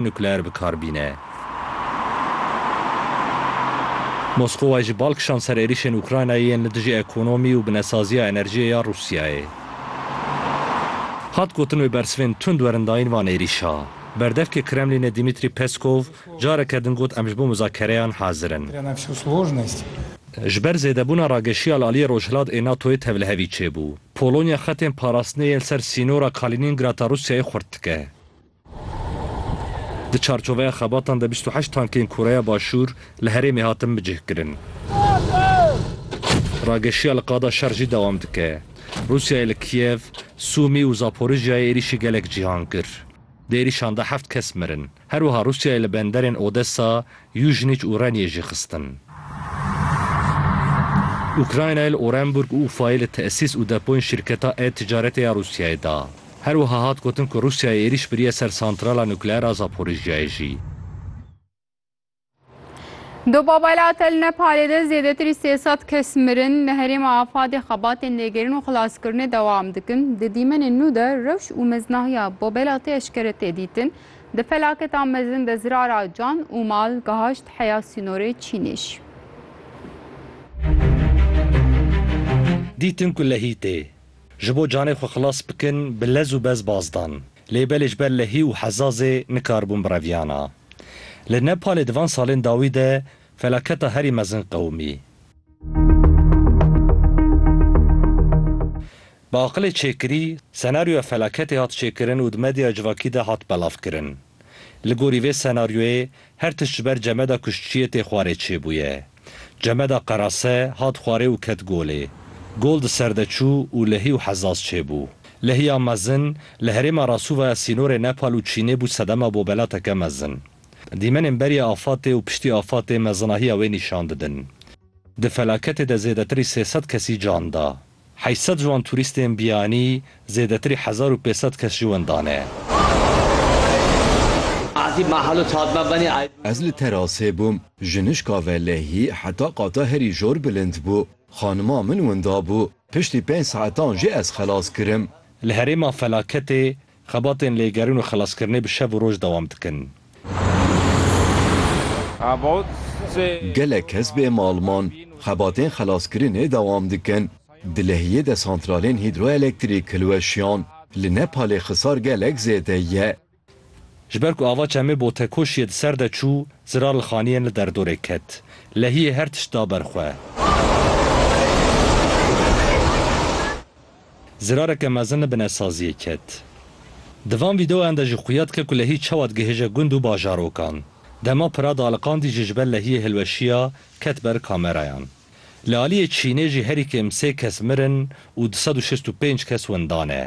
nukleer bi kar bîne. Moskowa jî bal kişand ser êrîşên Ukraynayê yên li dijî ekonomî û binesaziya enerjiyê ya Rûsyayê. Hat gotin wê bersivên tund werin dayîn van êrîşa. Berdevkê Kremlînê Dimitrî Peskov careke din got em ji bo muzakereyan hazir in. Ji ber zêdebûna rageşiya li aliyê rojhilat ê NATO'yê tevlihevî çêbû. Polonya xetên parastinê yên li ser sînora Kaliningrata Rûsyayê xurt dike. Di çarçoveya xebatan de bîst û heşt tankên Koreya Başûr li herêmê hatin bicihkirin. Rageşiya li qada şer jî dewam dike. Rûsyayê li Kiev, Sûmî û Zaporijyayê êrîşî gelek cîhan kir. Di êrîşan de heft kes mirin. Her wiha Rûsyayê li benderên Odesa, Yuzhnich û Reniê jî xistin. Ukraynayê li Orenburg û Ufayê li tesîs û depoyên şîrketa e-ticaretê ya Rûsyayê da. Her wiha hat gotin ku Rûsyayê êrîş biriye ser santrala nukleer a Zaporijjiyayê jî. Di Babela Tel Nepalê de zêdetirî sê sed kes mirin. Li herêma Afadê xebatên lêgerîn û xilaskirinê dewam dikin. Di dîmenên nû de rewş û meznahiya Babela Tê eşkere tê dîtin. Di felaketa mezin de zirara can û mal gehaşt heya sînorê Çînîş. Dîtin ku lehî tê. Ji bo canê xwe xilas bikin bi lez û bez baz dan. Lê belê ji ber lehî û hezazê nikaribûn bireviyana. Li Nepalê di van salên dawî de felaketa herî mezin qewimî. Bi aqilê çêkirî, senaryoya felaketê hat çêkirin û di medyaya civakî de hat belavkirin. Li gorî vê senaryoyê, her tişt ji ber Cemeda Kuştçiyê tê xwarê çêbûye. Cemeda Qerase hat xwarê û ket golê. Gol di ser de çû û lehî û hezaz çêbû. Lehiya mezin, li herêma Rasuva ya sînorê Nepal û Çînê bû sedema bobelateke mezin. Dîmenên beriya afatê û piştî afatê mezinahiya wê nîşan didin. Di felaketê de zêdetirî sê sed kesî can da. Heşt sed ji wan turîstên biyanî, zêdetirî hezar û pênc sed kes jî wendane. Ez li terasê bûm, jinişka velehî heta qata herî jor bilind bû. Xanima min winda bû, piştî pênc saetan jî ez xelas kirim. Li herêma felaketê Xebatên lêgerîn û xelaskirinê bi şev û roj dewam dikin. Gelek kes bê mal man. Xebatên xelaskirinê dewam dikin. Di Lehiyê de santralên hîdroelektrîk hilweşiyan. Li Nepalê xisar gelek zêde ye. Ji ber ku ava çemê Botekoşiyê di ser de çû, zirar li xaniyên li derdorê ket. Lehiyê her tişt da ber xwe. Zirareke mezin li bine saziyê ket. Di van vîdeoyan de jî xuya dike ku lehî çawa digihêje gund û bajarokan. Dema pira dialiqandî jî ji ber lehiyê hilweşiya ket ber kamerayan. Li aliyê Çînê jî herî kêm sê kes mirin û du sed û şêst û pênc kes windan e.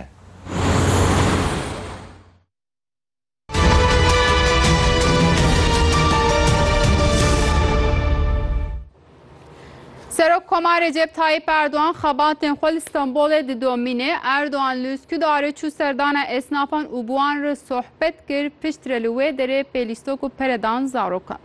Serok Koma Recep Tayyip Erdoğan xebatên xwe li Stenbolê didomîne. Erdoğan li Üsküdarê çû serdana esnafan û bi wan re sohbet kir, piştre li wê derê pêlîstok û pere dan zarokan.